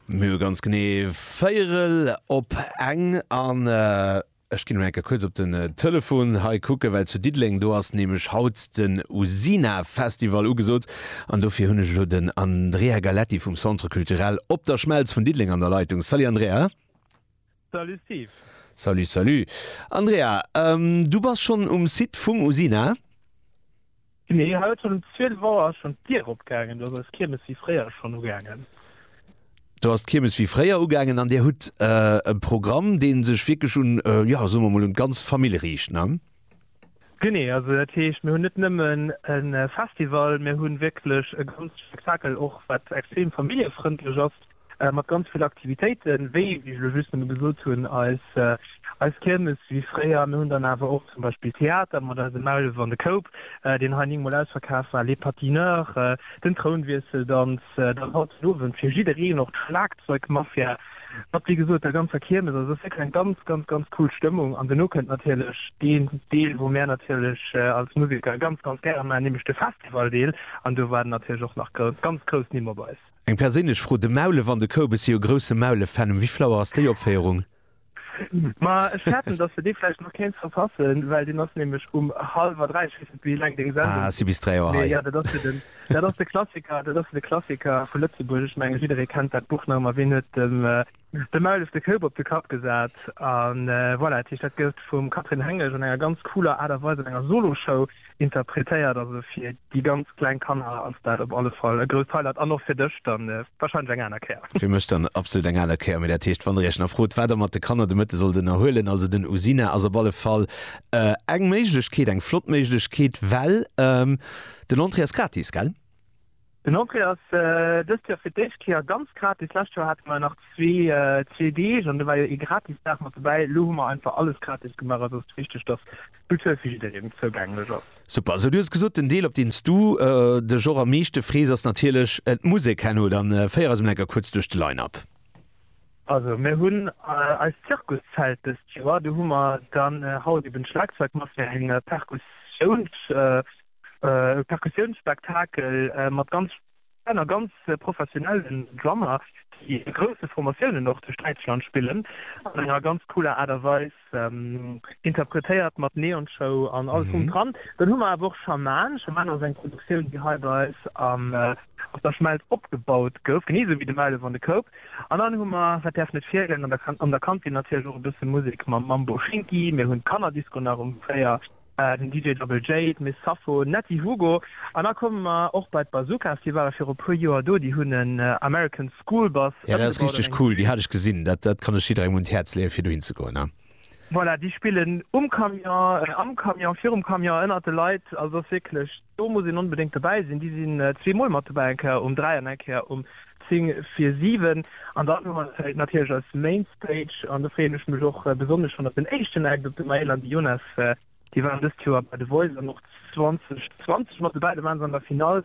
Mir hu ganz genee véierel op eng an ech ginn elo enker kuerz op den Telefon hei kucken, well zu Diddeleng do ass nämlech haut den Usina Festival ugesot an dofir hunn ech elo den Andrea Galleti vum Centre Culturel Op der Schmelz vun Diddeleng an der Leitung. Salut Andrea. Salut Steve. Salut salut Andrea, du bass schonn um Site vum Usina? Genee, haut schonn um 12 Auer ass schonn d'Dier opgaangen, do ass eis Kiermes wéi fréier schonn ugaangen. Do ass d'Kiermes wéi fréier ugaangen an Dir hutt e Programm, dee sech wierklech un, jo soe mer mol un d'ganz Famill riicht, ne? Genee, also dat heescht, mir hunn net nëmmen e Festival, mir hu wierklech e ganze Spektakel och, wat extrem familljefrëndlech ass, mat ganz vill Aktivitéiten, wéi ech elo just nëmme gesot hunn, eis Kiermes wéi fréier. Mir hunn dann awer och zum Beispill Theater mat eisem Maulef an de Koup, deen hei néngmol ausverkaf war, Les Patineurs, den Trounwiesseldanz, dann haut den Owend fir jiddereen och d'Schlagzeugmafia. Mat wéi gesot der ganzer Kiermes, also ass wierklech eng ganz ganz ganz cool Stëmmung an duerno kënnt natierlech deen Deel wou mär natierlech als Museker ganz ganz gäre maachen, nämlech de Festivaldeel an do waarden natierlech och nach grou ganz grouss Nimm op eis. Eng perséinlech Fro, de Maulef an de Koubes si jo grousse Maulef-Fan, um Wifflauer ass déi Opféierung? Ma ech fäerten dass de dee vläicht nach kéints verpassen, well deen ass nämlech um hallwer 3, ech weess net wéi laang deng Sendung Ah, si bis 3 Auer hei. Mee jo, dat ass jo den. Dat ass de Klassiker, dat ass de Klassiker vu Lëtzebuerg. Ech menge jidderee kennt dat Buch nach, ma ween huet dem dem Maulef de Koup op de Kapp gesat? A voilà, dat heescht, dat gouf vum Catherine Hengesch an enger ganz cooler Aart a Weis an enger Solo-Show interpretéiert. Also fir déi ganz kleng Kanner ass dat op alle Fall e grousst Highlight an och fir dech dann warscheinlech eng aner Kéier. Fir mech dann absolut eng aner Kéier. Mee dat heescht, wann der Iech nach frot, wat der mat de Kanner de Mëtte sollt ënnerhuelen, also den Usina ass op alle Fall eng Méiglechkeet, eng flott Méiglechkeet, well, Den Entrée ass gratis, gell? Den Entrée ass dëst Joer fir d'éischt Kéier ganz gratis. Lescht Joer hate mer nach zwee Deeg an do war jo ee gratis Dag mat dobäi. Elo hu mer einfach alles gratis gemaach. Eis ass et wichteg, dass d'Kultur fir jiddereen zougänglech ass. Super. Esou, du hues gesot, den Deel op deen s du dech och am meeschte frees ass natierlech d'Musek herno. Dann féier eis emol eng Kéier kuerz duerch de Line-Up. Also mir hunn eist Zirkuszelt dëst Joer. Do hu mer dann haut eben d'Schlagzeugmass fir eng Perkussioun. E Perkussiounsspektakel mat ganz schéinen a ganz professionellen Drummer, déi a grousse Formatiounen och duerch Däitschland spillen, an enger ganz cooler Aart a Weis interpretéiert, mat Neonshow an allem drum dran. Dann hu mer awer och Schaman. Schaman ass eng Produktioun, déi hei bei eis op der Schmelz opgebaut gouf, genee esou wéi de Meilen van de Koop. An dann hu mer, wat däerf net feelen, an der Kantin natierlech och e bësse Musek mam Mambo Schinki. Mir hunn d'Kannerdisco nach um 4. den DJ Double J, d'Miss Sappho, Natty Hugo an da komme mer och bei d'Bazookas, déi ware viru puer Joer do, déi hunn en American School Bus ëmgebaut an eng Bühn gemaach. Cool, déi hat ech gesinn, dat kann ech jidderengem un d'Häerz leeë fir dohin ze goen. Voilà, déi spillen um Camion, am Camion, virum Camion, ënnert de Leit, also et ass wierklech. Do muss een onbedéngt dobäi sinn. Déi sinn zwee Mol mat dobäi, eng Kéier um dräi an eng Kéier um zéng vir siwen. An dann hu mer natierlech eis Main Stage an do freeën ech mech och besonnesch schonn op den éischten Act, op de Maël an de Jonas. Déi waren dëst Joer bei The Voice an och 2020 mat dobäi. Do waren se an der Finall,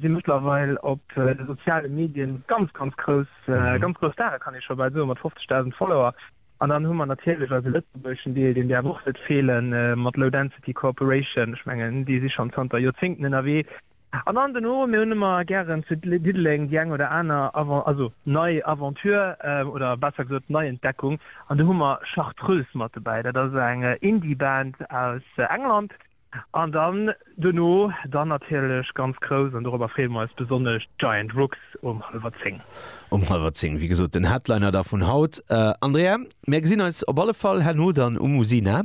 si mëttlerweil op de soziale Medien ganz, ganz grouss. Ganz grouss Stare kann ee scho bal soen, mat 50.000 Follower. An dann hu mer natierlech eise lëtzebuergeschen Deel, deen däerf och net feelen, mat Low Density Cooperation. Ech mengen, déi si schonn zanter Joerzéngten ënnerwee. An dann duerno, mir hunn ëmmer gären zu Diddeleng déi eng oder aner Avan, also nei Aventure oder besser gesot Neientdeckung. An do hu mer Chartreuse mat dobäi. Dat ass eng Indie-Band aus England, An dann duerno dann natierlech ganz grouss, an dorobber freeë mer eis besonnesch, d'Giant Rooks um hallwer zéng. Um hallwer zéng, wéi gesot, den Headliner da vun haut. Andrea, mär gesinn eis op alle Fall herno dann um Usina.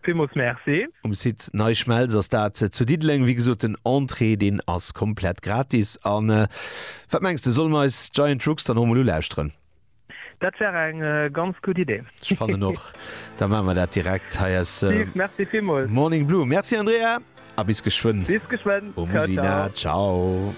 Villmools Merci. Um Site Nei Schmelz ass dat zu Diddeleng. Wéi gesot, den Entrée, deen ass komplett gratis. A wat mengs de, solle mer eis d'Giant Rooks dann och emol ulauschteren? Dat wär eng ganz gutt Idee. Ech fannen och, da maache mer dat direkt hei aus. Steve, merci villmools. Morning Blue. Merci Andrea a bis geschwënn. Bis geschwënn. Ciao, ciao. Au Musina. Ciao.